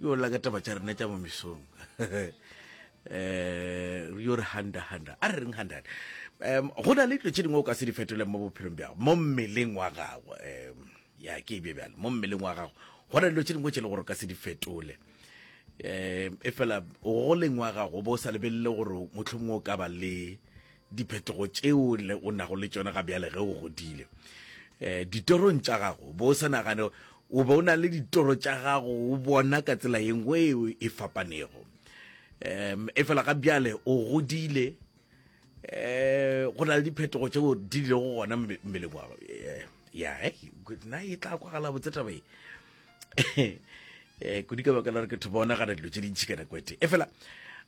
yo la ka taba tša rena tša mo mesong um yo re handa handa a re reng handa um go na le dilo tše dingwe o ka se di fetoleng mo bophelong bjago mo mmeleng wa gago um ya ke e bje bjale mo mmeleng wa gago go na le dilo tše dingwe tše e le gore o ka se di fetole um e fela o goleng wa gago o bo o sa lebelele gore motlhomongwe o ka ba le diphetogo tšeo le o nago le tšona ga bjale ge o godile um ditorong tša gago bo o sa nagane o be o na le ditoro tša gago o bona ka tsela ye nngwe eo e fapanego um e fela ga bjale o godile um go na le diphetogo tšeo di le go gona mmeleng wa eh, ya eh, na e tla kwagala botse tabe um eh, kudi ka baka la re ke thoba onagana dilo tše dintšhi ka nako e fela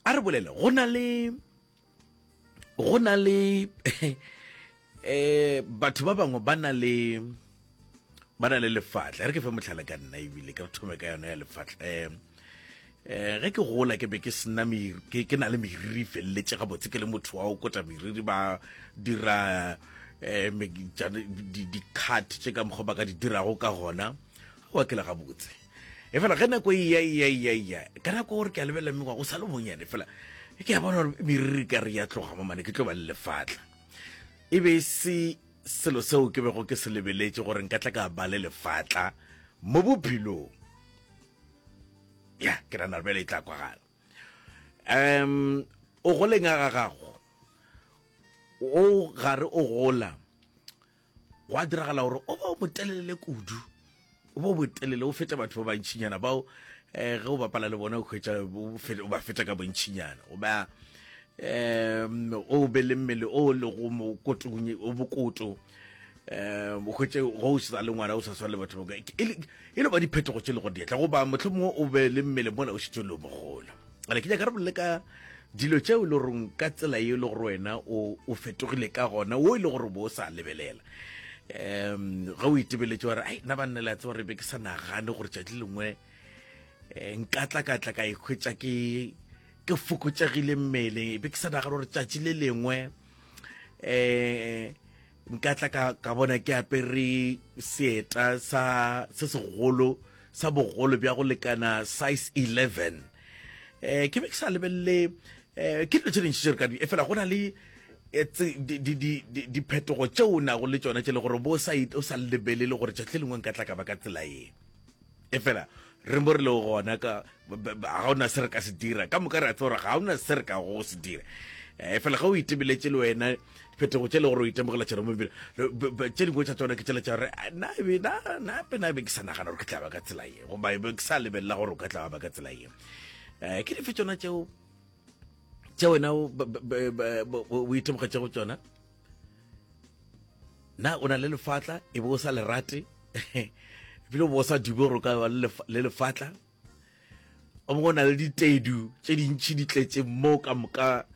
a re bolele go na le go na le eh batho ba bangwe ba na le ba na le lefatla re ke fe motlhala ka nna ebile ke re thome ka yone ya lefatla um um ge ke gola ke be ke sena ke na le meriri feleletse gabotse ke le motho wa o kota meriri ba dira um dikgate tse ka mokgwa ba ka di dirago ka gona wa ke le gabotse e fela ge nako eya eya eya eya ka nako gore ke a lebelela mme wa go sa le bonyane fela ke a bona gore meriri ka re ya tloga mo mane ke tlo ba le lefatla e be e se selo seo ke bego ke se lebeletse gore nka tla ka ba le lefatla mo bophelong ya ke rana bjale e tla kwagala um o goleng a ga gago o gare o gola gwa diragala gore o ba o motelelele kudu o ba o botelele o fete batho ba bantšhinyana bao um eh, ge o bapala le bona o kgwetsa o ba feta ka bontšhinyana o ba um o be le mmele o lego mokotong o bokoto um kgwetse go o sa le ngwana o sa swana le batho e le ba diphetogo tse le go dietla goba motlho mongwe o be le mmele mola o setse le o mogola ale ke nyaka re bolele ka dilo tšeo e le goreng ka tsela e le gore wena o fetogile ka gona o e le gore bo o sa lebelela um ga o itebeletse gore ai nna ba nne la tseba re be ke sa nagane gore tšatši lengwe eh, nkatla-katla ka ikgwetsa ke ke fokotsegile mmeleng e be ke sa nagane gore tšatši le lengwe um nka tla ka, ka bona ke apere seeta sa se segolo sa bogolo bja go lekana size 11 eh ke be ke sa lebelele eh ke dilo tse dintši tše re ka di e fela go na le eh, diphetogo tšeo o nago le tsona tše le gore bo o sa lebelele gore tšatši le lengwe nka tla ka ba ka tsela ye Efela re mo re lego gona ka ga o na se re ka se dira ka moka re a tsebora ga o na se re ka go se dira eh, efela ga o itebeletše le wena phetogo tše le gore o itemogela tšona mo tše dingwe tša tsona ke tšela tša gore ah, nape nabe ke sa nagana gore ke tlaba ka tsela ye goba be ke sa lebelela gore o ka tlaba ka tsela ye um ke dife tsona tšeo tše wena o itemogetšego tsona na o na le lefatla e be o sa le rate ebile o bo o sa dume gore o ka ba le lefatla o mongwe o na le ditedu tse dintšhi di tletseng moo ka moka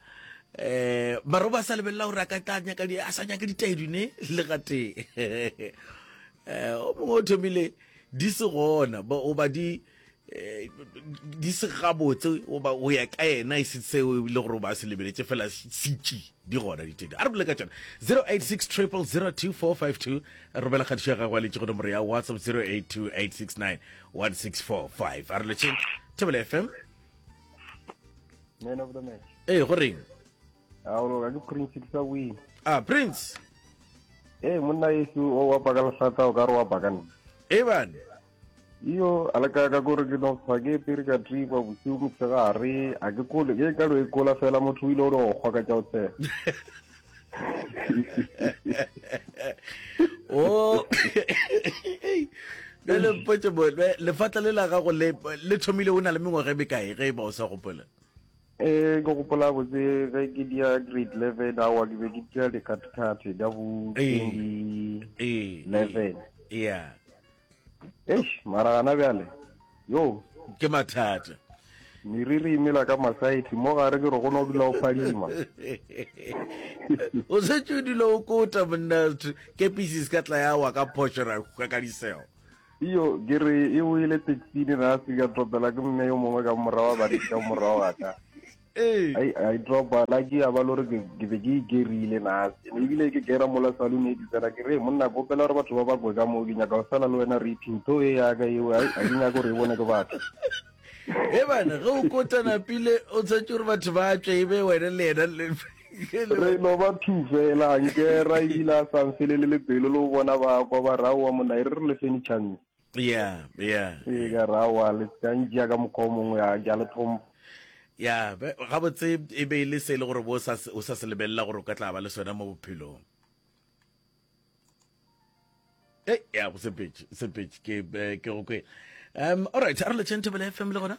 um mare o ba sa lebelela gore a ka tla nyaka a sa nyake ditedu ne le gatee um o mongwe o thomile di se gona o ba di Eh, di se gabotse oba o ya ka ena e se seo e bile gore o ba se lebeletse fela sitši di gona ditedi a re bole ka tsone 086 triple 02452 romela kgatišo ya gago a letse go nomoro ya whatsapp 082 869 1645 a re letseng tebele fm man of the match ee go reng a o loka ke prince ke sa win a prince ee monna yesu o wa baka lesata o ka re wa baka nna ee bane iyo a le ka ka gore ke no fa ke pere ka tripa bosiu motshegare a ke kole ke ka lo e kola fela motho o ile o le go kgwa ka tša o tshega o le le mpotse bo lefatla le la gago le le thomile o na le mengwaga e mekae ge e ba o sa gopola eh ke gopola botse ge ke dia grade eleven awa ke be ke dia dikhathikhathi ka bo twenty eleven yeah Eish, mara gana bjale, yoo. Ke mathata. Meriri e mela ka masaeti, mo gare ke re go no dula o phadima. O se tšo dula o kota monna kepisi se ka tla ya wa ka phošo ra hwa ka diseo. Iyo, ke re e o ile taxi ni ra se ka tropela ke mme yo mongwe ka morao ba re ka morao ga ka. Ee. Ai, ai dropa, lucky ya ba lo re ke ke be ke e gerile nase. Ne ebile ke gera mola saloon e ke tsena ke re, "Hey, monna ke opela gore batho ba ba kwe ka moo ke nyaka go sala le wena raping. Tho e ya ka eo, ai, a ke nyake gore e bone ke batho." He bana, ge o kotana pile o tshwantse gore batho ba tswe e be wena le yena le ke le Re wena. no ba two fela, a ngera ebile a sa mfelele le pelo le go bona ba kwa ba re, aowa monna e re re le fenitšhang. Yeah, yeah. Ee, ka ra wa le ka ntšea ka mokgwa o mongwe ya ke a le tlhompha. Ya, be- gabotse e be e le se e le gore bo o sa se- o sa se lebelela gore o ka tla ba le sona mo bophelong. Ei, ya, go sepetše, sepetše, ke eh, ke go kwele. Um, all right, a re le Chanthabela FM le gona?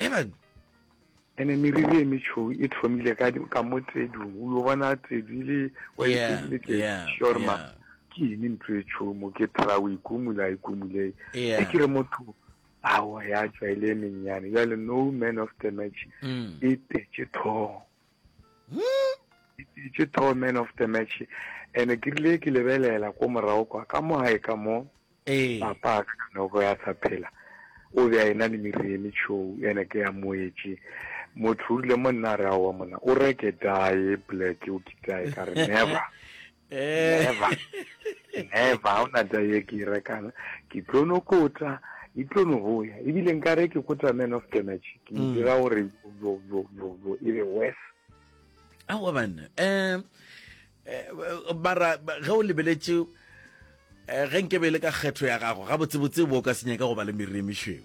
Amen. ene meriri e metšhou e thomile ka ka mo tsedung o yo bona tsedu e le wa Yeah, itsebile ke yeah, sure ma yeah. ke ene ntlo e tšhomo ke tra o ikumula a ikumule Yeah. e ke re motho awa ya tswa e le e mennyane jale no man of the match Mm. e tetse thogo ke tho man of the match ene ke rile ke lebelela ko morago kwa ka mo gae ka mo ee. papa ka kanoko ya sa phela o be a ena le mereme tšhou ene ke ya moetse motho o rile mo nna re aowa mona o reke dae black o kitae ka re never never never ga ona taba e ke e rekang ke tlo no kota e tlo no go ya ebile nka re ke kota man of the match ke mm. dira gore e be worse aowa banna um bara ge o lebeletse eh, ge nke be le ka kgetho ya gago gabotsebotse bo o ka senyaka go ba le meriri e mešweu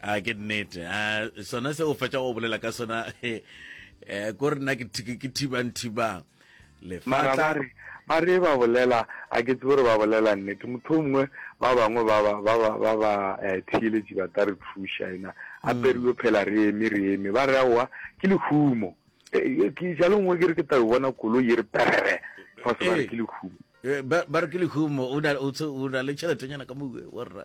a ke nnete a sona se o fetša go bolela ka sona eh, eh, ko re nna ke thibang thibang lefatla ba re ba bolela a ke tsebe gore ba bolela nnete motho o mongwe ba bangwe ba ba eh, theeletši ba ta re thuša ena a mm. periwe phela re eme re eme ba re aowa ke lehumo eh, ke jalo nngwe ke re ke tao bona kolo ye re perere fa se ba re ke lehumo ba re ke lehumo o na le tšheletenyana ka mowe warra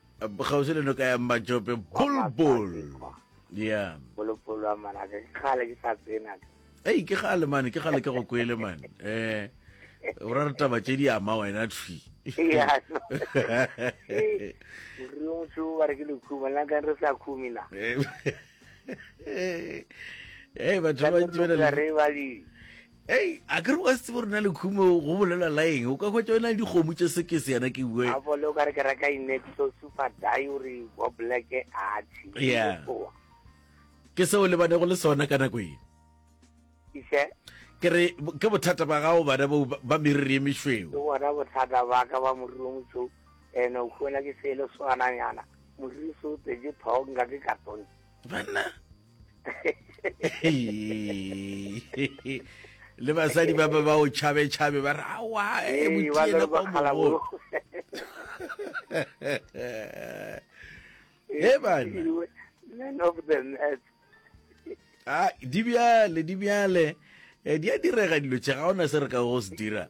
kgauswi le noka ya mmatšope bulbul ya bolopolo wa manaka ke kgale ke sa tsena ei ke gale mane ke gale ke go kwele mane um o ra re taba tše di ama wena thwi motho ba re ke lekhuma nna ka re sa khumi na ee batho ba bantsi ba na le Hei, a ke re wa se tsebo rena le khumo go bolelwa la eng? O ka hwetša o na le dikgomo tše sekese yana ke bue. A bole o ka re ke reka inexo super diary wa black a tshi. Yeah. Ke seo le bane go le sona ka nako e. Ise. Ke re ke bothata ba gago bana bo ba meriri e mešweu. Ke bona bothata ba ka ba moriri o motšhou ene o khona ke sele swana yana. Moriri so tseje thong ga ke ka tone. banna le basadi ba ba ba o chabe chabe ba re awa e mutiela kwa mogolo he bana men of the net a di bjale di bjale eh, di a direga dilo tše ga ona se re ka go se dira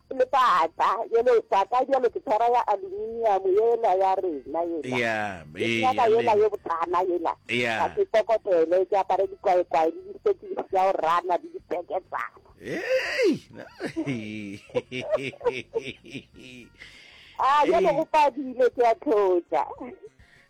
Lepata, ye lepata bjalo ke tshwara ya aluminium yela ya rena yela. Ya, ee, ya Nyaka yela ye lena. botana yela. Ya. Ka ke kokotele, ke apare dikwaekwae le distokisi tša go rana le dipeketsana. Hei! na- A, bjale go padile, ke a tlotša.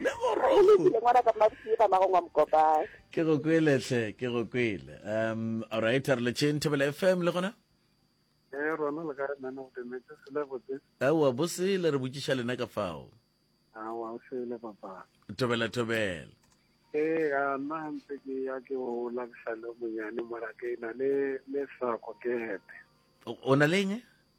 le ke go kwele hle ke go kwele um alright re le chain table fm le gona eh rona le ka re nana o demetse sele botse awa bo sele re botšiša lena ka fao awa o sele papa tobela tobela ee ga nna ntse ke ya ke o labisa le monyane mora ke na le le sako ke hepe o na le eng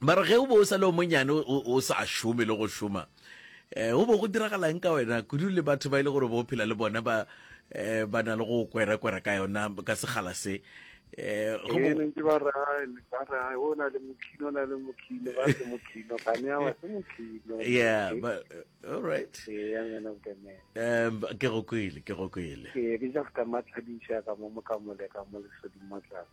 Ba re ge o be o sa le o monyane o sa šome le go šoma eh, go bo go diragalang ka wena kudu le batho ba ile gore bo phela le bona ba eh, ba na le go kwera-kwera ka yona ka segala se eh, eh ne ke ba re ba re o na le mokhino na le mokhino ba se mokhino ga ne wa se mokhino yeah but eh, all right yeah ngwana o kene um ke go kwile ke go kwile ke ke ja ka matshadisha ka mo mokamole ka mo le sodi motlana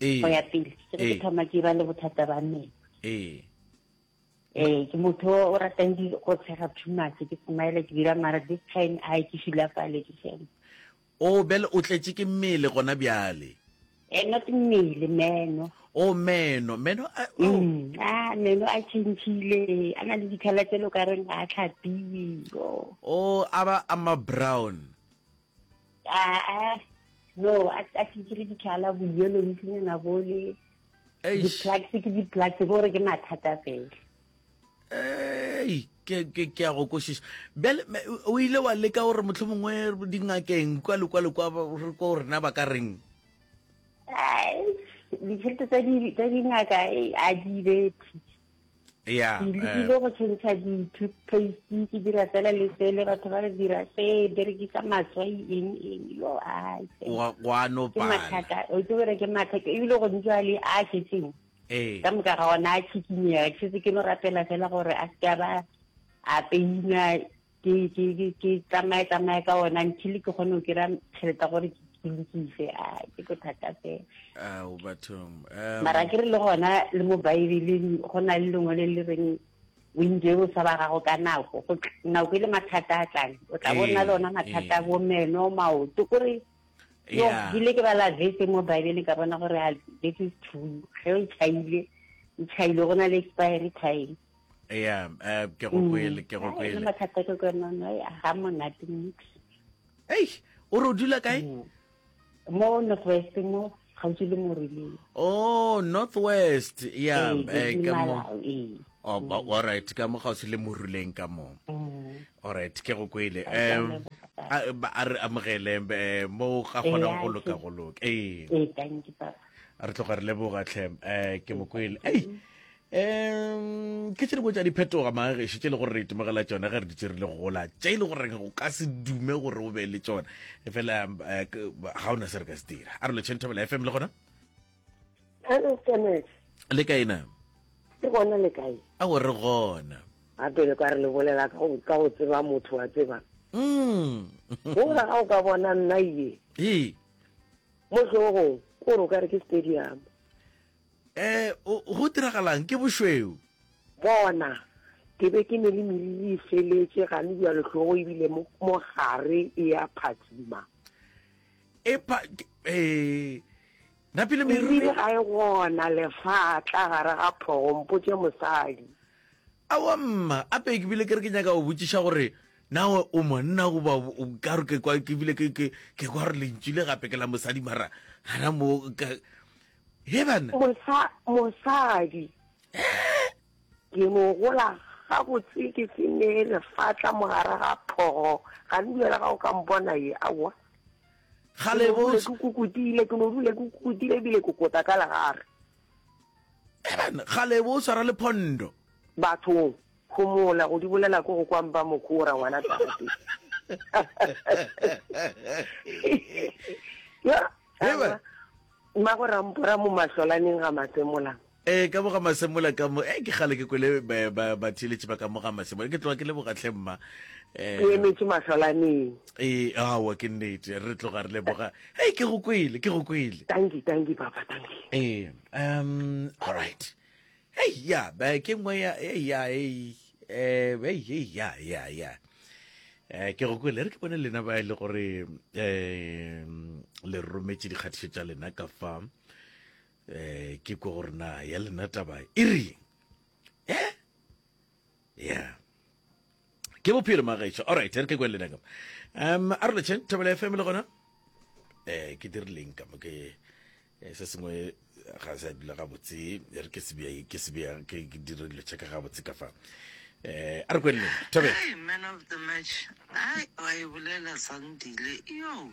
ee. go ya pele ke re ke ee. thoma ke ba le bothata ba mmele ee eh ke motho o ratang di go tshega too much ke smile ke dira mara this time a ke shula fale ke shame o bel o tletse ke mmele gona bjale eh not mmele meno o meno meno a mm, ah, meno a chintshile a na le dikhala tse lo ka reng a tlhapiwe o a ba a ma brown aa no a ke kere ditlhala boyelo ntlenyana bo le di-plugs ke di-plugs gore ke mathata fela ei ke a go kwešiša bjale o ile wa leka gore motlho mongwe dingakeng kwa le kwa le kwa re ko rena ba ka reng ditšhelete tsa dingaka a di bethe Yeah, ke lekile eh. go tšhentšha di-toothpaste ke dira fela le sele batho ba re dira se berekisa matswai eng eng yo aimathata o itse gore ke mathata ebile go ntse a le a šetseng eh. ka moka ga ona a tshikinyega ke setse ke no rapela fela gore a seka ba a peina ke ke ke ke tsamaye tsamaye ka ona until ke kgone go kira tšheleta gore ke ke lokise a ke go thata fela ao bathong mara ke re le gona le mo baebeleng go na le lengwe le le reng o ntse o sa ba gago ka nako go nako e le mathata a tlang o tla bona le ona mathata bo meno maoto kore yo ke ile ke bala vese mo baebeleng ka bona gore this is true ge o chaile o chaile go na le expiry time ya eh, ke go kwele ke go kwele mathata ke kwenono ga monate nix ei o re o dula kae mm. mo northwest mo gaufi le morileng o oh, northwest ya eh, ka mo oh, mm. all right ka mo gaufi le moruleng ka mo mm. all right ke go kwele um a re amogele eh, mo ga kgonang go loka go loka ee re tloga re leboga tlhem um ke mo kwele ei um ke tše dingwe tša diphetoga magešo tše e le gore re itemogela tšone ge re ditse re le gola tše e le gore o ka se dume gore o be le tšone e fela eh, ga o na se re ka se dira a re lotšheng thobela fm le gona le kae na ke gona le kae a o re gona a pele ka re le bolela ka go tseba motho wa tseba mm. gola ga o ka bona nna ye mo tlhogong o re o ka re ke stadium Eh, o, go diragalang? Ke bošweu. Bona, ke be ke ne le meriri e feletše, ga ne bjalo hlogo ebile mo, mo gare e ya phatsima. Epa, ke, eh, napile meriri. Meriri ga e gona, lefatla gare ga phogo, mpotše mosadi. Awa mma, ape ke bile ke re ke nyaka go botšiša gore na o, o monna goba o- o ka re ke kwa ke bile ke ke ke kwa gore lentšu le gape ke la mosadi mara gana mo ka Ge bana. Mosa, mosadi. Ee. Ke no gola gabotse ke se ne lefatla mogare ga phogo ga ne duela ga o ka mpona ye awa gale bo ke kukutile ke no dule ke kukutile bile ke kota ka legare ebane gale bo tshwara le phondo bathong go mola go di bolela ko go kwang ba mokora ngwana tate ya Mmago Rampora mo mahlolaneng ga Masemola. Ee, ka mo ga Masemola ka mo. Ee, ke kgale ke kwele batheeletši ba ka mo ga Masemola. Ke tloga ke leboga tlhe mma. Ke emetše mahlolaneng. Ee, aowa ke nnete. Re tloga re leboga. Hei, ke go kwele, ke go kwele. Dankie, dankie papa, dankie. Ee, um, all right. Hei ya, ba ke ngwe ya hei ya hei eh hei hei ya ya ya. Eh ke go kwele re ke bone lena ba e le gore eh le rometse dikgatišo tša lena ka fa eh ke go gore na ya lena taba e reng. Eh yeah ke bophelo magaetšo alright re ke kwelele ka um a re lotšheng thobela fm le gona eh ke dirileng ka mo ke eh, se sengwe ga se dula ga botse re ke sebea ke sebea ke dire dilo tšaka ga botse ka fa eh a re kwelele thobela man of the match ai wa e bolela sandile yo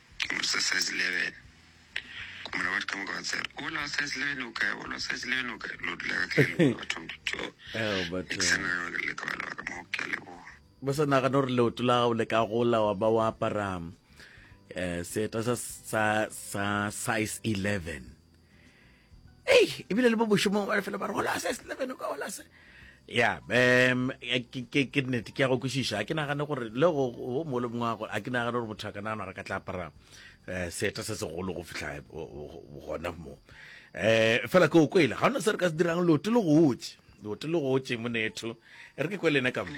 sa nagana gore leoto la gago le ka gola wa ba wa apara um seeta sa size 11 ei ebile le bo bošomong ba lefelo ba re gola se eleven ka gola se ya um ke nnete ke ya go kwešiša a ke nagane gore le go mo le mongwe gore a ke nagane gore motho a ka nagana gore ka tla apara um seeta se segolo go fitlha gona mo um fela ke o kwele ga ona se re ka se dirang lote le gotse lote le gotse monetho e re ke kwele ena ka mo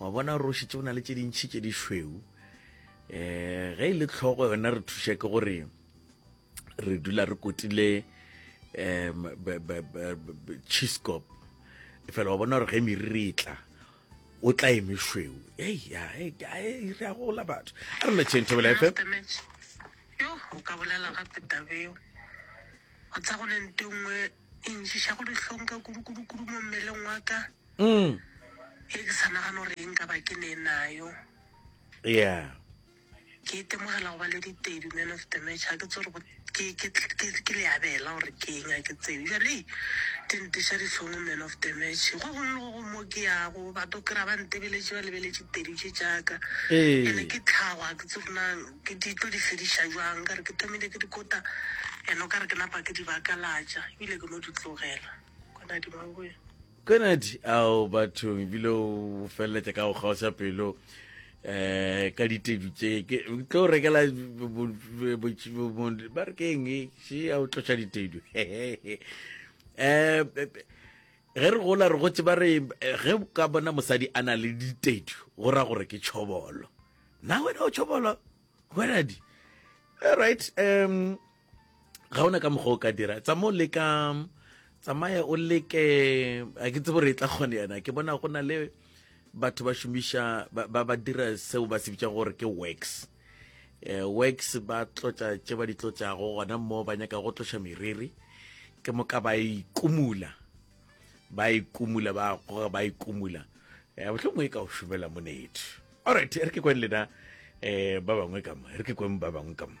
wa bona gore o šetse o na le tše dintšhi tše di šweu um eh, ge e le tlhogo yona re thuše ke gore re dula re kotile um chiscop fela wa bona gore ge meriri e tla o tla e mešweu ei ya e re a gola batho a re metšheng thobela efe yo o ka bolela gape tabeo o tsa go le nto nngwe e ntšiša go dihlong ka kudukudukudu mo mmeleng wa ka mm. e ke sa nagana gore e nka ba ke ne nayo yeah ke itemogela go ba le ditedu man of the match ga ke tse gore ke le abela gore ke eng a ke tsebe jale di nteša difono man of the match go gongwe go go mo ke yago batho kry-a ba ntebeletse ba lebeletse tedu tše jaaka ee. ande ke tlhagwa ke tse gona ke di tlo di fediša jwang ka re ke thomile ke dikota and o ka re ke napa ke di bakalatša ebile ke no di tlogela konadi ao bathong ebile o feleletša ka go kgaoša pelo um ka ditedu tse ke tlo rekela ba re keng se a o tloša ditedu um ge re gola re gotse ba re ge ka bona mosadi a na le ditedu go ra gore ke tšhobolo na wena o tšhobolo kgweradi all right um ga ona ka mokgwa o ka dira tsa mo leka tsamaya o leke a ke tsebo re e tla kgone yana ke bona go na le batho ba šomiša ba ba dira seo ba se bitsa gore ke wax eh, wax ba tlotša tše ba di tlotšago gona mo ba nyaka go tloša meriri ke moka ba ikumula ba ikumula ba goga ba ikumula um bohlongwe e ka o šomela monetho allright e re ke kweng lena um ba bangwe kamo e re ke kweng ba bangwe kamo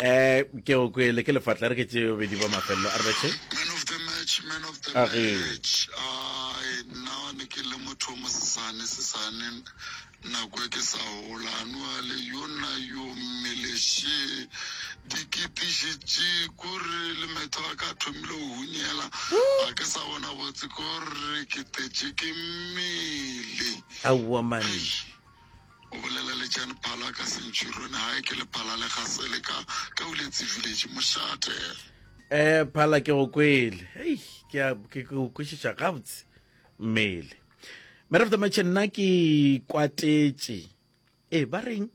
um ke go kwele ke lefatla re ke tse bobedi ba mafelelo a rete nna ne ke le motho o mosesane sesane nako e ke sa gola anuale yo nna yo mmeleshe dikitiši tše kore le metho a ka thomile go hunyela a ke sa bona botse kore ke tetše ke mmele Aowa man. Eish. O bolela le Jan Phala ka Centurion hae ke le Phala le gasele ka ka uletsi village mošate. Eh phala ke go kwele hei ke a- ke ke o kwešiša gabotse mmele mare of the match nna ke ikwatetše ee ba reng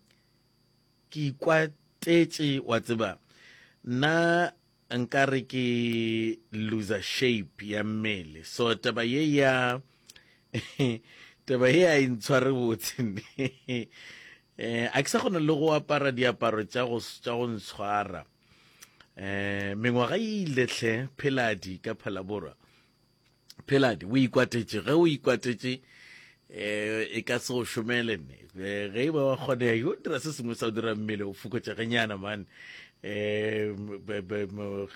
ke ikwatetše wa tseba nna Nka re ke loser shape ya mmele so taba ye ya taba ye a e ntshware botse eh a ke sa kgona le go apara diaparo tša go tša go ntshwara eh mengwaga e ile hle pheladi ka phalaborwa pheladi o ikwatetše ge o ikwatetše um e ka se go šomele ne eh, ge e ba wa kgonega yo dira se sengwe sa o dira mmele o fokotšegenyana mane um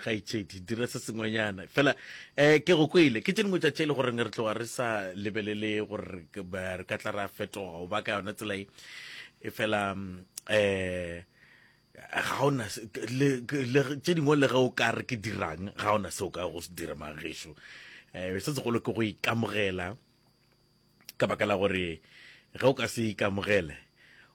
gaitšhedi dira se sengwenyana fela um ke go kwele ke tše dingwe tša tše e le goreng re tloga re sa lebelele gore re ka tla ra fetoga o ba ka yona tsela e e fela um ga ona tše dingwe le ge o ka re ke dirang ga ona se o ka go se dira mageso um eh, se segolo ke go ikamogela ka baka la gore ge o ka se ikamogele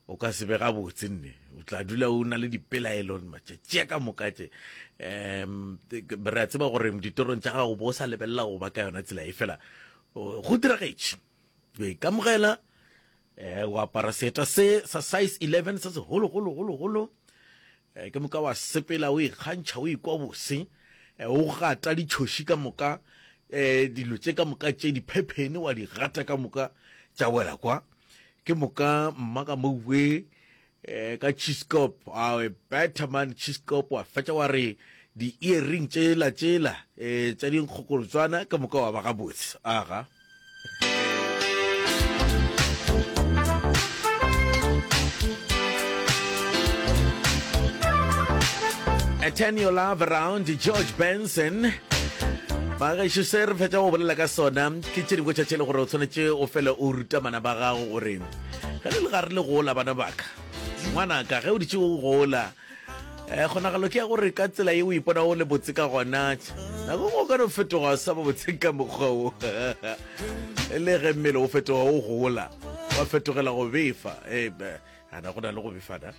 o ka se be gabotse nne o tla dula o na le dipelaelo matšatši a ka moka tše um re a tseba gore ditorong tša gago bo o sa lebelela go ba ka yona tsela e fela go diragetše o ikamogela Eh, o apara seeta se sa size 11 se segolo golo golo golo eh, ke moka wa sepela o ikgantšha o ikwa bose eh, o gata ditšhoši ka moka eh, dilo tše ka moka tše diphephene wa di gata ka moka tša wela kwa ke moka mma ka mouwe Eh, ka chiscop awe better man chiscop wa fetša wa re di-earring tšela tšela um eh, tša dinkgokolotswana ka moka wa ba gabotse aga eh, turn your love around george benson bagaešo se re fetša go bolela ka sona ke tše dingwe tšatšele gore o tshwanetse o fele o ruta mana ba gago gore Ge le le ga re le gola, bana baka, ngwanaka, ge o ditše o gola, eh, kgonagalo ke ya gore ka tsela ye o ipona o le botse ka gona, nako go ka no fetoga sa ba botse ka mokgwa o le ge mmele o fetoga o gola wa fetogela go befa. Eh, ana go na le go befana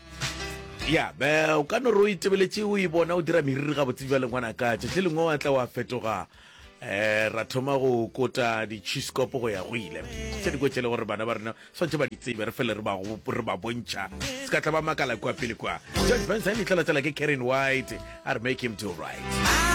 ya be o ka no re o itebeletše o e bona o dira meriri gabotse bja lengwana ka tšatši lengwe wa tla wa fetoga Eh, ra thoma go kota ditšhiskopo go ya go ile tse di kwetse le gore bana ba rena swantse ba di tsebe re fele re ba re ba bontšha se ka tla ba makala kwa pele kwa george benson e tlala tsela ke karen white a re make him to right